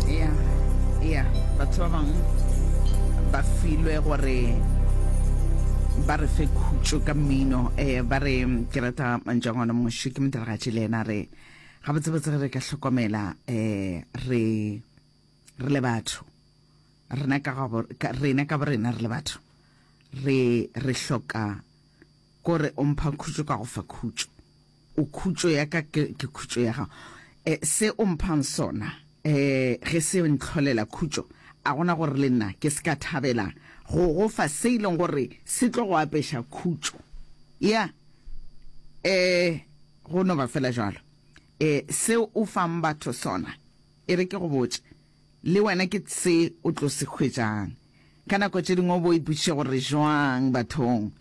ya ya batho ba bangwe ba filwe gore ba re fe khutšo ka mmino um ba re ke rata manjangwana moši ke modiragatši le ena re ga botsebotse re ka hlokomela um re re le batho rena ka borena re le batho re re hloka Ko re, O mpha khutšo ka go fa khutšo. O khutšo ya ka, ke, ke khutšo ya gago. E, se O mphang sona, e, ge se ntlholela khutšo, a gona gore le nna ke se ka thabela go Go fa se e leng gore se tlo go apeša khutšo? Ya. E, go no ba fela bjalo. E, seo O fang batho sona. E re ke go botše. Le wena ke tse o tlo se hwetšang. Ka nako tše dingwe o bo ipotšiša gore jwang bathong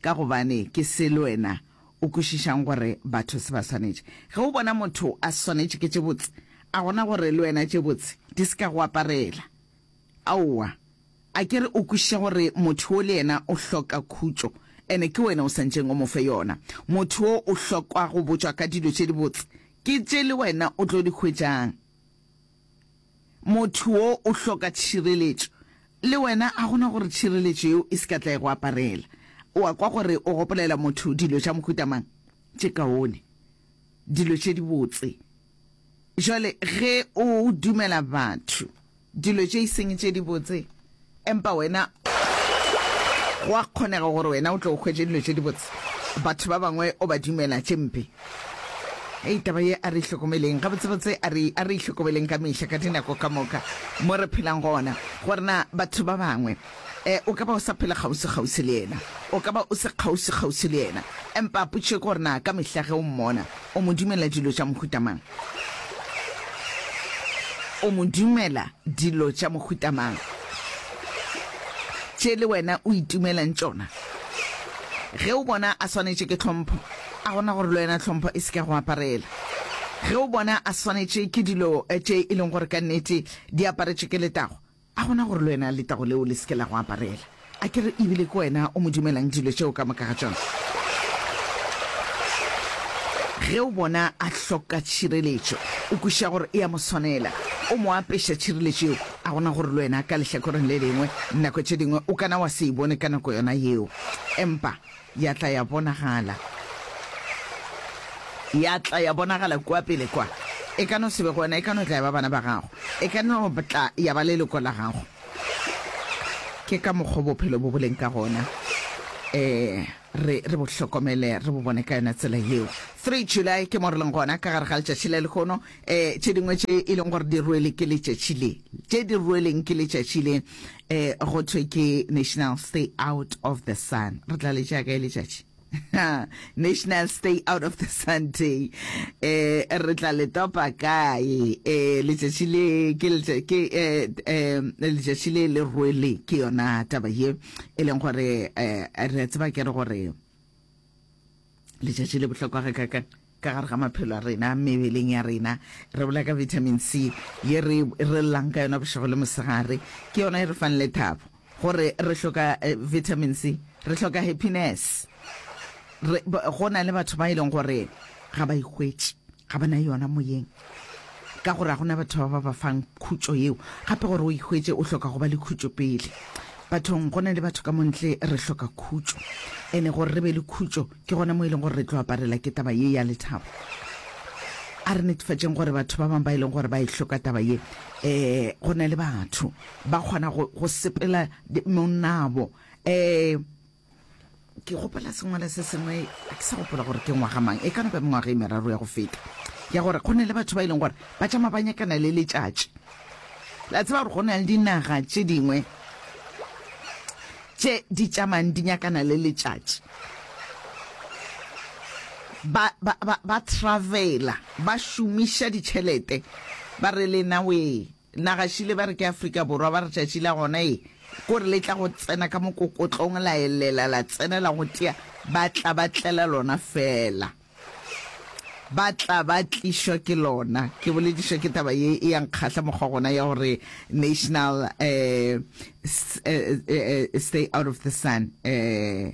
ka gobane ke se le wena o kwešišang gore batho se ba swanetše. Ge o bona motho a swanetše ke tše botse, a gona gore le wena tše botse di se ka go aparela? Aowa. A ke re o kwešiša gore motho wo le yena o hloka khutšo and ke wena o sa ntšeng o mo fe yona. Motho wo o hlokwa go botšwa ka dilo tše dibotse ke tše le wena o tlo di hwetšang. Motho wo o hloka tšhireletšo. Le wena ga go na gore tšhireletšo yeo e se ka tla e go aparela. O a kwa gore o gopolela motho dilo tša mohuta mang? Tše kaone. Dilo tše dibotse. Bjale ge o dumela batho dilo tše e seng tše dibotse, Empa wena, go a kgonega gore wena o tle o hwetše dilo tše dibotse, batho ba bangwe o ba dumela tše mpe. Hei, taba ye, a re ihlokomeleng, gabotsebotse, a re, a re ihlokomeleng ka mehla, ka dinako ka moka, mo re phelang gona, gore na batho ba bangwe, e, o ka ba o sa phela kgauswi-kgauswi le yena, o ka ba o se kgauswi-kgauswi le yena, empa potšo ke gore na ka mehla ge o mmona, o mo dumela dilo tša mohuta mang. O mo dumela dilo tša mohuta mang? Tše le wena o itumelang tšona? Ge o bona a swanetše ke tlhompho, a gona gore le wena tlhompho e se ke ya go aparela? Ge o bona a swanetše ke dilo tše e leng gore ka nnete di aparetšwe ke letago, A go na gore le wena letago leo le se ke la go aparela? A ke re e bile ke wena o mo dumelang dilo tšeo ka moka ga tšona? Ge o bona a hloka tšhireletšo, o kwešiša gore e a mo swanela, o mo apeša tšhireletšo yeo. A go na gore le wena ka lehlakoreng le lengwe nako tše dingwe o ka na wa se e bone ka nako yona yeo, empa Ya tla ya bonagala. Ya tla ya bonagala kua pele kwa. E ka no se be go wena, e ka no tla ya ba bana ba gago. E ka no tla ya ba leloko la gago. Ke ka mokgwa bophelo bo boleng ka gona. Eh, re, re bo hlokomele, re bo bone ka yona tsela yeo. 3 July ke mo re leng gona, ka gare ga letšatši le lehono, um tše dingwe tše e leng gore di rwele ke letšatši le tše di rweleng ke letšatši le um go thwe ke national stay out of the sun re tla letša kae letšatši national stay out of the sun day um re tla le topa kae um letšatši le ke um letšatši le le rwele ke yona taba ye e leng gore um re a tseba ke re gore Letšatši le bohlokwa ga ka ka ka gare ga maphelo a rena mebeleng ya rena re bola ka vitamin c ye re re llang ka yona bošego le mosegare ke yona e re fang le thabo gore re hloka eh, vitamin c re hloka happiness re go na le batho ba e leng gore ga ba ikgwetše ga ba na yona moyeng Ka gore ga go na batho ba ba ba fang khutšo yeo gape gore o e hwetše o hloka go ba le khutšo pele. Bathong go na le batho ka mo ntle re hloka khutšo. Ene gore re be le khutšo ke gona mo e leng gore re tlo aparela ke taba ye ya lethabo. A re netefatšeng gore batho ba bangwe ba e leng gore ba e hloka taba ye um go na le batho ba kgona go sepela monnabo um ke gopela sengwale se sengwe a ke sa gopola gore ke ngwaga mang e ka nako ya mengwaga e meraro ya go feta ya gore go ne le batho ba e leng gore ba tšama ba nyakana le letšatši la tseba gore go na le dinaga tše dingwe tše di tšamang di nyakana le letšatši ba, ba, ba, ba travela ba šomiša ditšhelete ba re lena wee Nagašile ba re ke Afrika Borwa, ba re tšatši la gona e ko re le tla go tsena ka mokokotlong la elela la tsena la go tea, ba tla ba tlela lona fela. Ba tla ba tlišwa ke lona. Ke boledišwa ke taba ye e yang kgahla mokgwa gona ya gore national eh, eh, eh, stay out of the sun eh,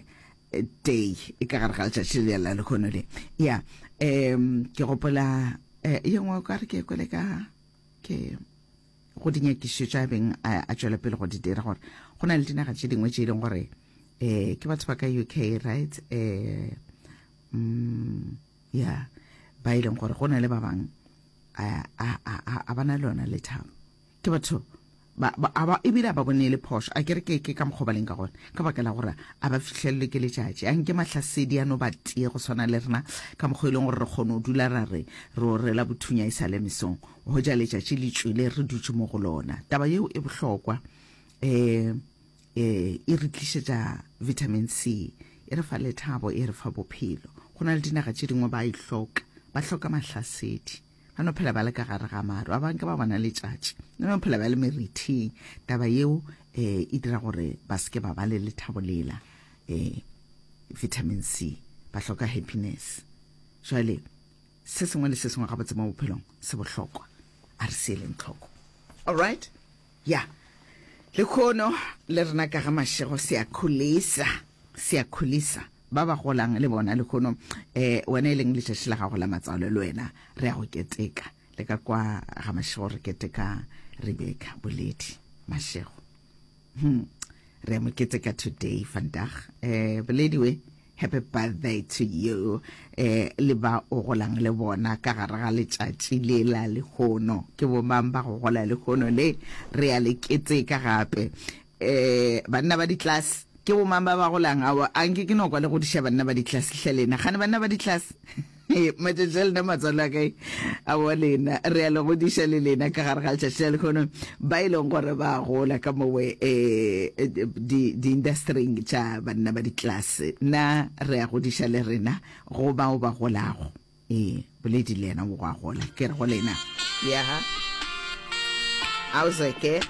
day e ka gare ga letšatši le la lehono le ya um ke gopola eh, ye nngwe o ka re ke kwele ka ke go dinyakišo tša beng a, a tšwela pele go di dira gore go na le dinaga tše dingwe tše e leng gore eh ke batho ba ka uk right eh mm, yeah ba e leng gore go na le ba bangwe a ba na le yona lethabo ke batho Ba, ba, a ba, ebile a ba bone e le phošo. A ke re ke, ke ka mokgwa ba leng ka gona, ka baka la gore a ba fihlelelwe ke letšatši. A nke mahlasedi a no ba tee go swana le rena, ka mokgwa e leng gore re kgone go dula ra re re o rela bothunya e sa le mesong, go ja letšatši le tšwele re dutše mo go lona. Taba yeo e bohlokwa. E, e, e re tlišetša vitamin C, e re fa lethabo, e re fa bophelo. Go na le dinaga tše dingwe ba e hloka, ba hloka mahlasedi. ba no phela ba le ka gare ga maru ba bangwe ke ba bona letšatši ba no phela ba le merithing taba yeo eh e dira gore ba seke ba ba le lethabo lela eh vitamin c ba hloka happiness jale se sengwe le se sengwe gabotse mo bophelong se bohlokwa a re seeleng tlhoko all right Ya. Lekhono le rena ka ga mašego se a kholisa, se a kholisa. Ba ba golang le bona lekhono, eh, wena e leng letšatši la gago la matsalo, le wena re a go keteka. Le ka kwa ga mašego re keteka Rebecca Boledi Mašego. Hum, re a mo keteka today, vandag. Eh, Boledi we. Happy birthday to you eh, le ba o golang le bona ka gare ga letšatši le la lehono ke bo mang ba go gola lehono le re ya le keteka gape eh, banna ba ditlase ke bo mang ba ba golang ao anke ke nokwa le go diša banna ba ditlase hle lena gane banna ba ditlase Ee, matšatši a lena matswalo a kae a wa lena re a le godiša le lena ka gare ga letšatši la lekgono ba e leng gore ba gola ka mowe um di-industryng di tša banna ba ditlase na re a godiša le rena go bao ba golago ee boledi le yena o go a gola ke re go lena yaha auzeke